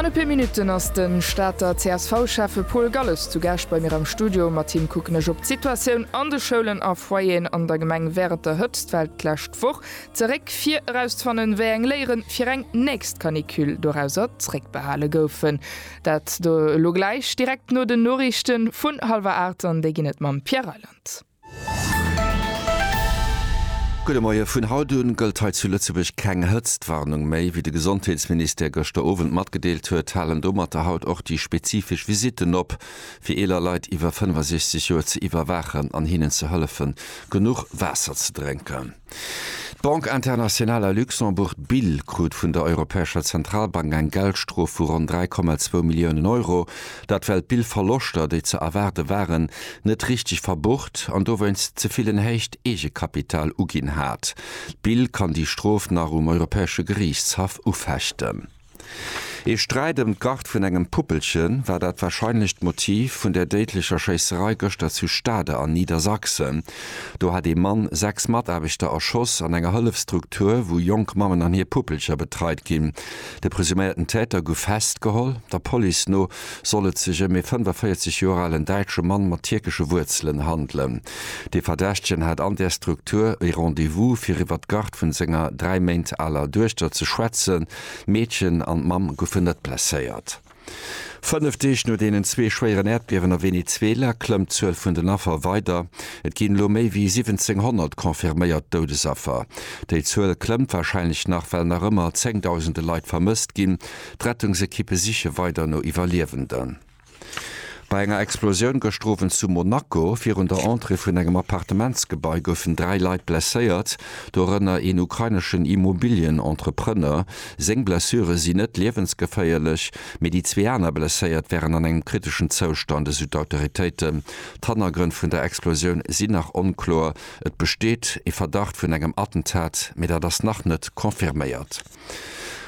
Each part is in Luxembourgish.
An e puer Minutten ass de Stater CSV-Schäffe Paul Galles zu Gäscht bei mir am Studio. Mat him kucken ech op d'Situatioun an de Schoulen a Foyeren an der Gemeng wärend der Hëtztwell d'lescht Woch zeréck, fir erauszefannen, wéi eng Léieren fir eng nächst Canicule dorauser zréckbehale goufen. Dat elo gläich direkt no den Noriichten vun hallwer 8 an déi ginn et mam Pierre Reyland. Gudde Moie, Vun haut un gëllt hei zu Lëtzebuerg keng Hëtztwarnung méi. Wéi de Gesondheetsministère gëschter Owend matgedeelt huet, halen domatter haut och déi spezifesch Visitten op, fir eeler Leit iwwer 65 Joer ze iwwerwaachen an hinnen ze hëllefen, genuch Waasser ze drénken. D'Banque Internationale à Luxembourg, d'BIL, krut vun der Europäescher Zentralbank eng Geldstrof vu ronn 3,2 Milliounen Euro. Dat well d'BIL Verloschter, déi ze erwaarde waren, net richteg verbucht an dowéinst ze vill en héicht Eegekapital uginn hat. D'BIL kann déi Strof nach um Europäesche Geriichtshaff ufechten. Ee Sträit ëm d'Gard vun engem Puppelchen war dat warscheinlecht Motiv vun der déidlecher Schéisserei gëschter zu Stade an Niedersachsen. Do hat ee Mann sechs Mataarbechter erschoss an enger Hëllefstruktur, wou jonk Mammen an hir Puppelcher betreit ginn. De presuméierten Täter gouf festgeholl. Der Police no soll et sech ëm ee 45 Joer alen däitsche Mann mat tierkesche Wuerzelen handelen. De Verdächtegen hat an där Struktur e Rendez-vous, fir iwwer d'Garde vun senger dräi Méint aler Duechter ze schwätzen. D'Meedchen an d'Mamm goufen net blesséiert. Fënnef Deeg no deenen zwee schwéieren Äerdbiewen a Venezuela klëmmt d'Zuel vun den Affer weider. Et ginn elo méi wéi 1.700 confirméiert Doudesaffer. Déi Zuel klëmmt warscheinlech nach, well nach ëmmer zéngdausende Leit vermësst ginn. D'Rettungsekippe siche weider no Iwwerliewenden. Bei enger Explosioun gëschter Owend zu Monaco virun der Entrée vun engem Appartementsgebai goufen dräi Leit blesséiert, dorënner een ukraineschen Immobilien-Entrepreneur. Seng Blessure sinn net liewensgeféierlech, mee déi zwee aner Blesséiert wären an engem kriteschen Zoustand, esou d'Autoritéiten. D'Hannergrënn vun der Explosioun sinn nach onkloer. Et besteet ee Verdacht vun engem Attentat, mee dat ass nach net confirméiert.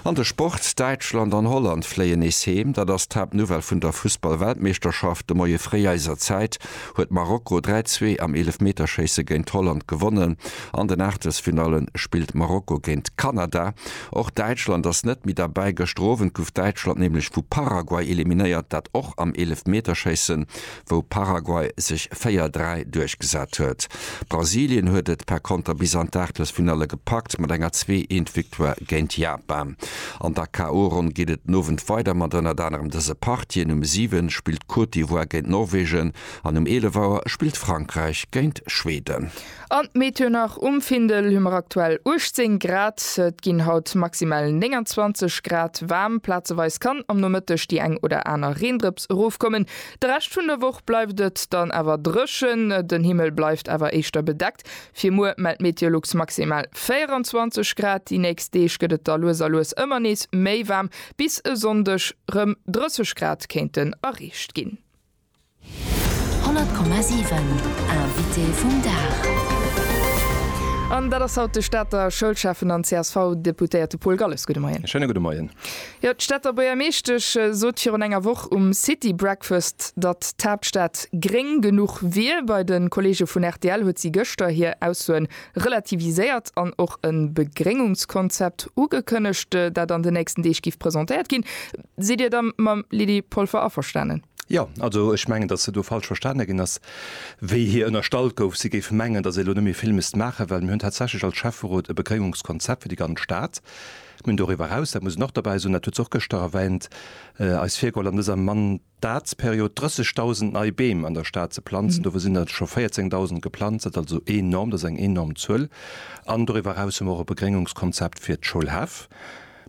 An de Sport, Däitschland an Holland fléien nees heem. Dat ass d'Haaptnouvelle vun der Fussball-Weltmeeschterschaft. De Moie fréi eiser Zäit huet Marokko 3, 2 am Eelefmeterschéisse géint Holland gewonnen. An den Aachtelsfinalle spillt Marokko géint Kanada. Och Däitschland ass net méi derbäi. Gëschter Owend gouf Däitschland nämlech vu Paraguay eliminéiert, dat och am Eelefmeterschéisse wou Paraguay sech 4, 3 duerchgesat huet. Brasilien huet et par Konter bis an d'Aachtelsfinalle gepackt mat enger zwee eent Victoire géint Japan. An der KO-Ronn geet et den Owend weider mat ënnert anerem dëse Partien, Um 7 spillt d'Côte d'Ivoire géint Norwegen an um 11 Auer spillt Frankräich géint Schweden. An d'Méternach um Findel hu mer aktuell 18 Grad. Et ginn haut maximal 29 Grad waarm. Plazeweis kann am Nomëtteg déi eng oder aner Reendrëps erofkommen. De Rescht vun der Woch bleift et dann awer dréchen, den Himmel bleift awer éischter bedeckt. Fir muer mellt d'Meteolux maximal 24 Grad. Déi nächst Deeg gëtt et da lues a lues ëmmer nees méi waarm, bis e Sonndeg rëm 30 Grad kéinten erreecht ginn. 100,7 Invité vum Dag. An dat ass haut de Stater Schoulschäffen an CSV-Deputéierte Paul Galles. Gudde Moien. E schéine gudde Moien. Jo, d'Stater Buergermeeschtesch sot virun enger Woch um City Breakfast, datt d'Haaptstad gréng genuch wier. Bei de Kolleege vun rtl huet si gëschter hir Aussoen relativiséiert an och e Begréngungskonzept ugekënnegt, dat an de nächsten Deeg géif presentéiert ginn. Sidd Dir da mam Lydie Polfer averstanen? Jo, also ech mengen, datt se do falsch verstane ginn ass, wéi hir ënnerstallt gouf, si géif mengen, datt ee lo net méi vill misst maachen, well mir hunn tatsächlech als Schäfferot e Begréngungskonzept fir déi ganz Stad. Mir hunn doriwwer eraus, dat muss een och dobäi soen, dat huet se och gëschter erwähnt, eis virgeholl an dëser Mandatsperiod 30.000 nei Beem an der Stad ze planzen. Dovun sinn der scho 14.000 geplanzt, dat ass also enorm, dat ass eng enorm Zuel. An doriwwer eraus hu mer och e Begréngungskonzept fir d'Schoulhäff.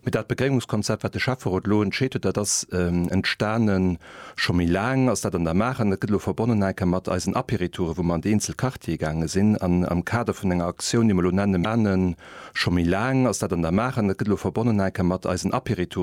Mee dat Begréngungskonzept, wat de Schäfferot elo entscheet huet, dat ass entstane scho méi laang, ass dat an der Maach. An dat gëtt elo verbonnen eng Kéier mat eisen Aperitouren, wou mer an déi eenzel Quartiere gaange sinn an am Kader vun enger Aktioun, déi mer elo nennen, scho méi laang, ass dat an der Maach. An dat gëtt elo verbonnen eng Kéier mat eisen Aperitouren.